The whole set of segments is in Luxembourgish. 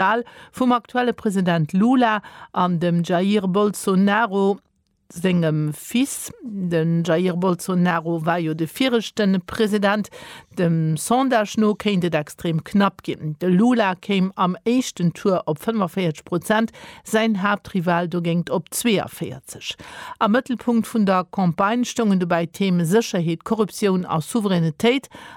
d'Wal vum aktuelle President Lula an dem Jair Bolsonaro sengem Fils. De Jair Bolsonaro war jo de viregte President. Dem Sondage no kéint et extrem knapp ginn. De Lula kéim am éischten Tour op 45 Prozent, säin Haaptrival dogéint op 42. Am Mëttelpunkt vun der Campagne stoungen dobäi d'Theme Sécherheet, Korruptioun a Souveränitéit.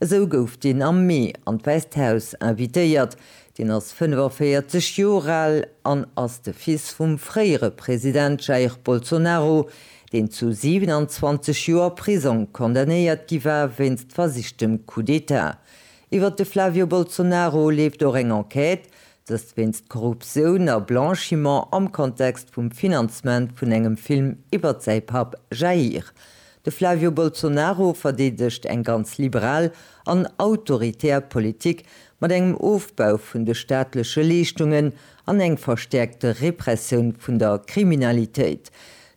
Esou gouf deen am Mee an d'Wäisst Haus invitéiert. Deen ass 45 Joer al an ass de Fils vum fréiere President Jair Bolsonaro, deen zu 27 Joer Prisong condamnéiert gi war wéinst versichtem Coup d'Etat. Iwwert de Flavio Bolsonaro leeft och eng Enquête, dëst wéinst Korruptioun a Blanchiment am Kontext vum Finanzement vun engem Film iwwert säi Papp Jair. De Flavio Bolsonaro verdeedegt eng ganz liberal an autoritär Politik mat engem Ofbau vun de staatleche Leeschtungen an eng verstäerkte Repressioun vun der Kriminalitéit.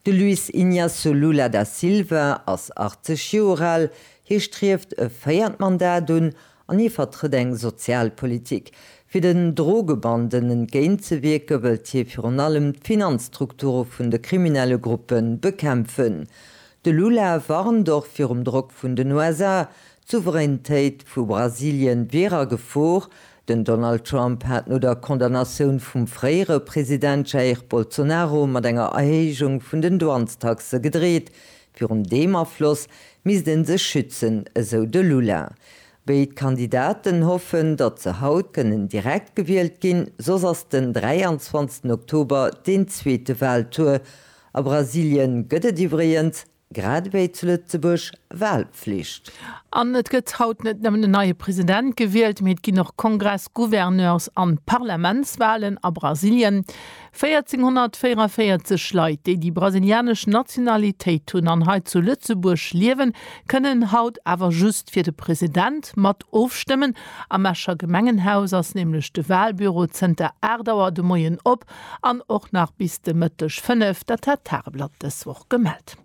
De Luiz Inácio Lula da Silva ass 80 Joer al, hie strieft e véiert Mandat un An hie vertrëtt eng sozial Politik. Fir den Drogebanden entgéint ze wierke wëllt hie virun allem d'Finanzstrukture vun de kriminelle Gruppe bekämpfen. De Lula warnt och virum Drock vun den USA, d'Souveräintéit vu Brasilien wier a Gefor. Den Donald Trump hat no der Condamnatioun vum fréiere President Jair Bolsonaro mat enger Erhéijung vun den Douanestaxe gedreet, Virun deem Afloss misst ee sech schützen, esou de Lula. Béid Kandidaten hoffen, datt se haut kënnen direkt gewielt ginn, soss ass den 23 Oktober deen zweete Waltour. A Brasilien gëtt et iwwregens, grad ewéi zu Lëtzebuerg, Walflicht. An et gëtt haut net nëmmen en neie President gewielt, mee et ginn och Kongress-, Gouverneurs an Parlamentswalen a Brasilien. 1444 Leit, déi déi brasilianesch Nationalitéit hunn an hei zu Lëtzebuerg liewen, kënnen haut awer just fir de President mat ofstëmmen. Am Escher Gemengenhaus ass nämlech de Walbüro zënter 8 Auer de Moien op an och nach bis de Mëtteg 5, dat hat d'Tageblatt dës Woch gemellt.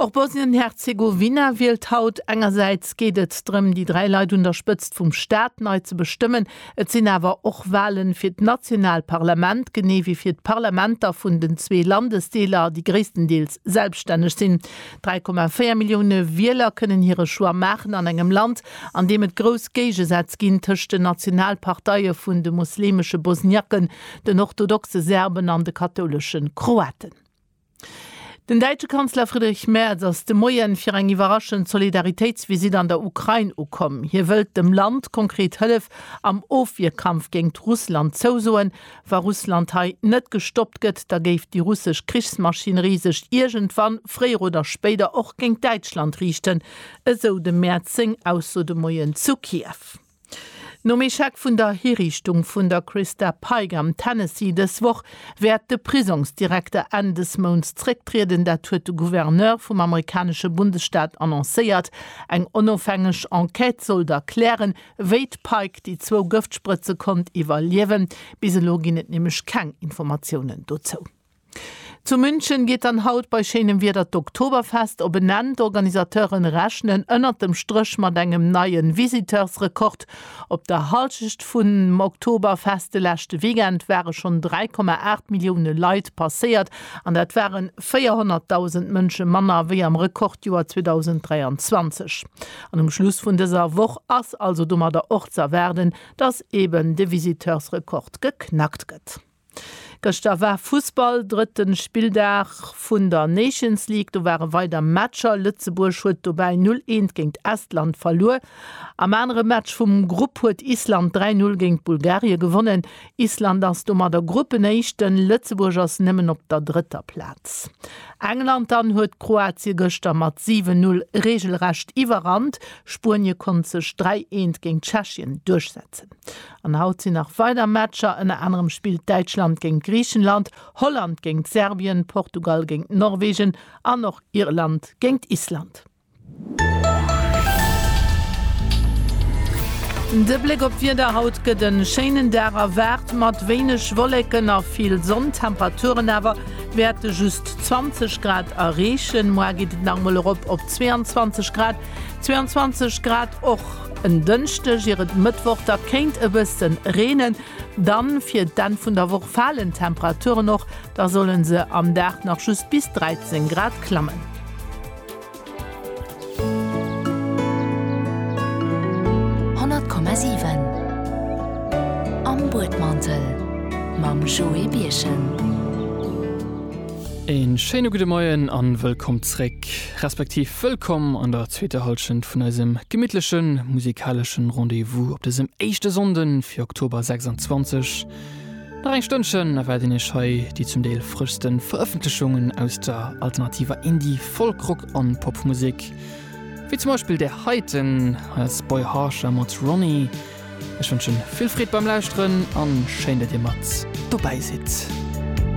Och Bosnien-Herzegowina wielt haut. Engersäits geet et drëm, déi dräi Leit un der Spëtzt vum Staat nei ze bestëmmen. Et sinn awer och Wahlen fir d'nationaalt Parlament, genee wéi fir d'Parlamenter vun den zwee Landesdeeler, déi gréisstendeels selbststänneg sinn. 3,4 Millioune Wieler kënnen hire Choix maachen an engem Land, an deem et grouss Géigesätz ginn tëscht den national Parteie vun de muslimesche Bosniaken, den orthodoxe Serben an de kathoulesche Kroaten. Den däitsche Kanzler Friedrich Merz ass de Moien fir eng iwwerraschend Solidaritéitsvisitt an der Ukrain ukomm. Hie wëllt dem Land konkret Hëllef am Ofwierkampf géingt Russland zousoen. Wa Russland hei net gestoppt gëtt, da géif déi russesch Krichsmaschinerie sech iergendwann, fréier oder spéider, och géingt Däitschland riichten, esou dem Merz seng Ausso de Moien zu Kiew. Nom Echec vun der Hiriichtung vun der Christa Pike am Tennessee dës Woch wäert de Prisongsdirekter Enn des Mounts zrécktrieden. Dat huet de Gouverneur vum amerikanesche Bundesstaat annoncéiert. Eng onofhängeg Enquête soll da klären, wéi d'Pike déi zwou Gëftsprëtze konnt iwwerliewen. Bis elo ginn et nämlech keng Informatiounen dozou. Zu München geet dann haut bei schéinem Wieder d'Oktoberfest op en Enn. D'Organisateuren rechnen ënnert dem Stréch mat engem neien Visiteursrekord. Op der Halschecht vum Oktoberfest de leschte Weekend ware schonn 3,8 Millioune Leit passéiert an dat ware 400.000 Mënsche manner wéi am Rekordjoer 2023. An um Schluss vun dëser Woch ass also domadder och z'erwaarden, dass eben de Visiteursrekord geknackt gëtt. Gëschter war Fussball, drëtten Spilldag vun der Nations League. Do ware weider Matcher. Lëtzebuerg huet dobäi 0 Eent géint Estland verluer. Am anere Match vum Grupp huet Island 3 Null géint Bulgarie gewonnen. Island ass domadder Gruppenéischten. Lëtzebuerg ass nëmmen op der drëtter Plaz. England dann huet Kroatie gëschter mat 7 Null reegelrecht iwwerrannt. Spuenie konnt sech 3 Eent géint Tschechien duerchsetzen. An haut sinn nach weider Matcher, ënner anerem spillt Däitschland géint Griichenland, Holland géint Serbien, Portugal géint Norwegen an och Irland géint Island. De Bléck op d'Wieder, Haut gëtt e schéinen Dag erwaart, mat wéineg Wolleken a vill Sonn. D'Temperaturen awer wäerte just 20 Grad erreechen. Moar geet et nach emol erop op 22 Grad, 22 Grad och. En Dënschdeg ier et Mëttwoch da kéint e bësse reenen. Dann fir d'Enn vun der Woch falen d'Temperaturen och, da solle se am Dag nach just bis 13 Grad klammen. Musek, respektiv wëllkomm an der zweeter Halschent vun eisem gemittleche musikaleschen Rendez-vous op dësem éischte Sonnden fir Oktober 26. Nach eng Stënnchen erwaarden iech hei déi zum Deel frëschsten Verëffentlechungen aus der alternativer Indie-, Folk-, Rock an Popmusek, wéi zum Beispill där heiten hei ass Boy Harsher mat Ronnie. Ech wënschen vill Freed beim Lauschteren an schéin dat dir mat dobäi sidd.